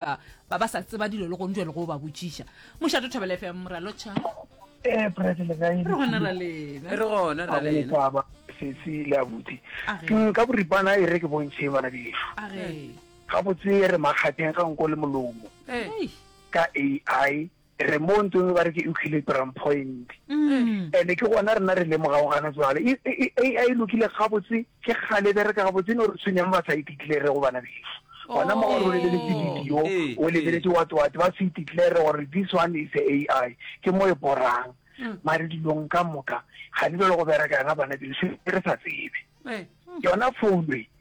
ba ba sa tseba dilo le gong jale go ba botšiša mošate o thabela fm ralotšha ee eh, prete le kae re gona ra lena re gona ra lena sesi le abuti mm, ka boripana e re ke bontšhe bana bešo ga botse re makgatheng ga nko le molomo ka ai Re mo ntse ba re ke equilibrium point. Ene ke gona rena re lemogago gana jwale. E, e, e, AI e lokile gabotse, ke kgale e bereka gabotse, e no re tshwenyang ba sa e declare go bana beso. Gona mo gore o lebeletse oh. video, eh, o lebeletse eh. what what, ba se e declare gore this one is a AI. Ke mo e borang. Mm. Mare dilong ka moka, ga di belo go bereka yona bana beso, re sa tsebe. Eh. Yona founu e,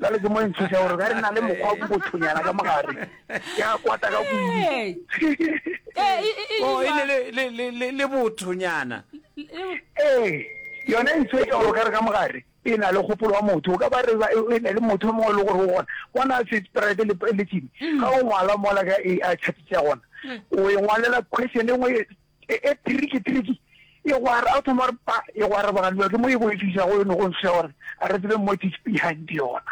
Jale ke mo e ntshoša gore ga re na le mokgwa o bothonyana ka mogare ke a kwata ka kudu oh, le bothonyana ee yone e ntshoša gore ka re ka mogare e na le kgopolo wa motho o ka ba re e na le motho o mongwe e le gore o gona bona se sprite le tsene mm. ga o ngwala mola ka a chatisa gona mm. o e ngwalela question e nngwe E, e, tiriki, tiriki. E go ara, a thoma gore pa, e go araba ga lua, ke mo e go e fisa go yone go ntsha gore, a re tsebe mo tis behind yona.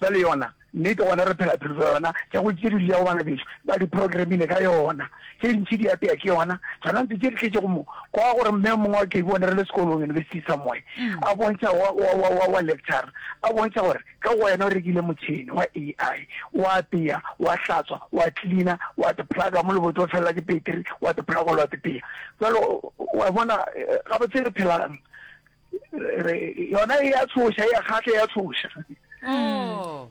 Ba le yona, nnete gona re phela phelo tsa yona, tša go tše di lia go bana beso, ba di programmile ka yona. Tše ntši di apea ke yona, tsona ntse tše di tletše go mo, kwa gore mme o mongwe wa ke bone re le sekolong, university somewhere, a bontšha wa, wa, wa, wa, wa lecture, a bontšha gore, Ka go wena o rekile motšhene wa AI, o a apeya, o a hlatswa, o a klina, o a tiplaga mo lebotse o felela ke peteri, o a tiplaga gola o a tipeya. Bjalo, o a bona, gabotse re phelang, re, yona e a tshoša, e a kgahla, e a tshoša. Oh.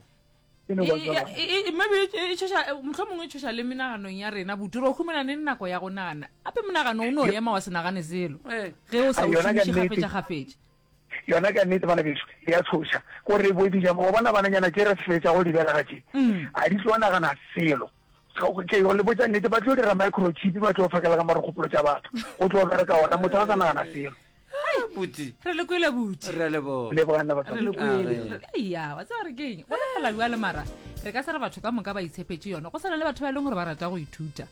E no ba E- jwalo. e- e- e- maybe e e tšhoša eh, mohlomongwe e tšhoša le menaganong ya rena butu re o humana ne nako ya go nagana gape monagano o ne o ema wa se nagane selo Ee. ge o sa Ah, o yona ka šomiše nnete. kgafetša-kgafetša Yona ka nnete bana beso e a tshoša gore bo di nyama wa bona bananyana tše re fetša go di belega tše a di tlo nagana selo ke go le botša nnete ba tlo dira microchip ba tlo fakela ka mare kgopolo tša batho o tlo bereka ona motho a sa nagana selo buti re le kwele buti re le bo le bona ba re le kwele ya wa tsaya re keng go le fela jwa le mara re ka se re batho ka moka ba itshepetse yona go sala le batho ba e leng gore ba rata go ithuta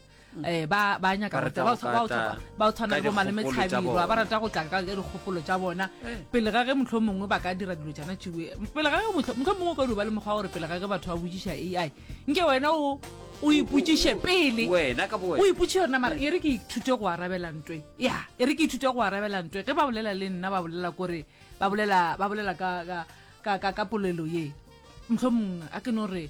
eh ba ba nyaka Ba go rata ba go tsa- ba go tata tsa- ba go tshwana ka le bo malome dikgopolo tsa tshabirwa ba bona. rata go tla ka ka dikgopolo tsa bona pele ga ge motlho mongwe ba ka dira dilo tsana tšewe pele ga ge motlho motlho mongwe o ka duba le mokgwa wa gore pele ga ge batho ba botsiša ai nke wena o o ipotsiše pele wena ka bo o wena ipotše yona mara e re ke ithute go arabela ntwe ya e re ke ithute go arabela ntwe ge ba bolela le nna ba bolela kore ba bolela ba bolela ka ka ka ka, ka polelo ye mohlomong a ke no re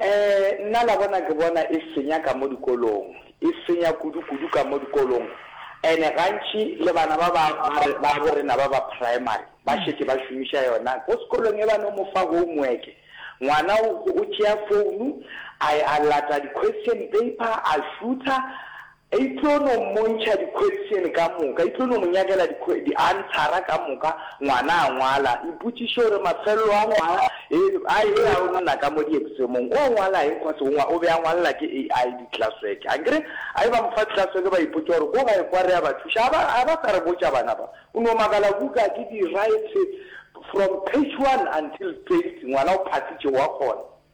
Ee, nna la bona ke bona e senya ka mo dikolong, e senya kudu-kudu ka mo dikolong. And-e gantši le bana ba ba, ba re, ba bo rena ba ba primary, ba šetše ba šomiša yona. Ko sekolong e ba no mo fa homework, ngwana o, o tšea founu, a, a lata di-question paper, a šutha, E tlo no mmontšha dikhwetšene ka moka, e tlo no mo nyakela dianthara ka moka, ngwana a ngwala, ipotšiše gore mafelelo a ngwala eno a e-be a o nna ka mo dieksemong, o ngwala eng cos o be a ngwalela ke AI di-classwork. A nkere a e ba mo fa classwork ba ipotša gore ko gae kwa re a ba thuša, a ba a ba sa re botša bana ba, o no makala buka ke di-write from page one until twenty, ngwana o phathitše wa kgona.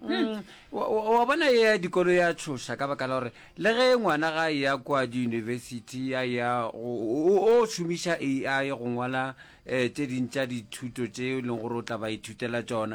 Mm, wa- wa wa bona e ya dikolo ya tshoša ka baka la gore le ge ngwana ga ya kwa diyunibesithi ya ya go- o o šomiša ai go ngwala um tse ding tša dithuto tse e leng gore o tla ba ithutela tsona